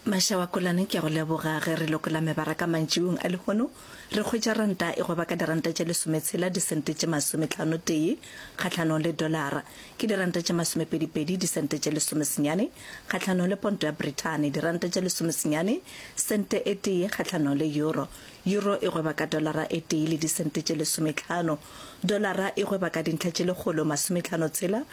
Masha wa Kolane ke a go leboga ge re lokola mebaraka mantšiwong a lehono re hwetša ranta e goba ka diranta tše lesometshela disente tše masometlhano tee kgahlanong le dolara ke diranta tše masomepedipedi disente tše lesomesenyane kgahlanong le ponto ya Brithane diranta tše lesomesenyane sente e tee kgahlanong le euro euro e goba ka dolara e tee le disente tše lesometlhano dolara e goba ka dintlha tše lekgolo masometlhano tshela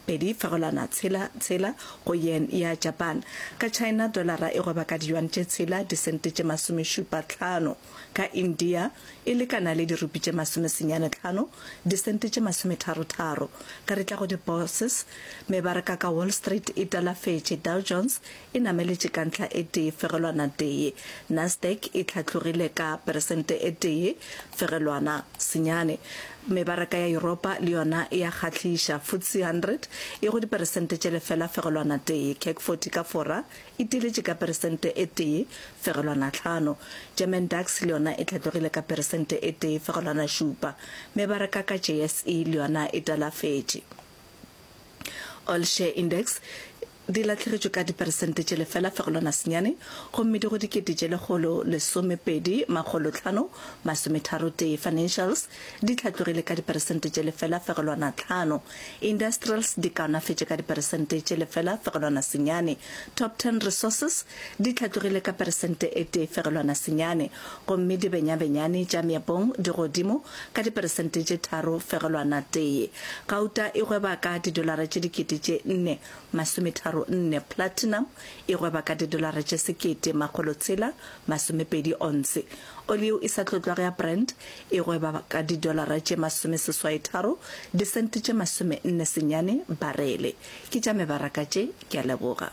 Pedi fegolwana tshela tshela go yen ya Japan. Ka China dolara e goba ka diyuan tše tshela disente tše masomešupa tlhano. Ka India e lekana le dirupi tše masomesenyane tlhano disente tše masometharo tharo. Ka re tla go di bourses, mebaraka ka Wall Street e talafetše Dow Jones e nameletše ka ntlha e tee fegelwana tee, Nasdaq e hlatlogile ka peresente e tee fegelwana senyane. Mebaraka ya Yuropa le yona e a kgahliša, FTSE 100 e go diperesente tše lefela fegelwana tee, CAC 40 ka fora e tiiletše ka peresente e tee fegelwana hlano, German DAX le yona e hlatlogile ka peresente e tee fegelwana šupa. Mebaraka ka JSE le yona e talafetše. All Share Index, di lahlegetšwe ka diperesente tše lefela fegelwana senyane gomme di go dikete tše lekgolo lesomepedi makgolo tlhano masometharo tee. Financials di hlatlogile ka diperesente tše lefela fegelwana tlhano. Industrials di kaonafetše ka diperesente tše lefela fegelwana senyane. Top Ten Resources Di hlatlogile ka peresente e tee fegelwana senyane, gomme dibenyabenyane tša meepong di godimo ka diperesente tše tharo fegelwana tee. Gauta e gweba ka didolara tše dikete tše nne masometharo nne, platinum e gweba ka didolara tše sekete makgolo tshela masomepedi onse. Oli yeo e sa tlotlwago ya Brent e gweba ka didolara tše masomeseswaetharo disente tše masomenne senyane barele. Ke tša mebaraka tše, ke a leboga.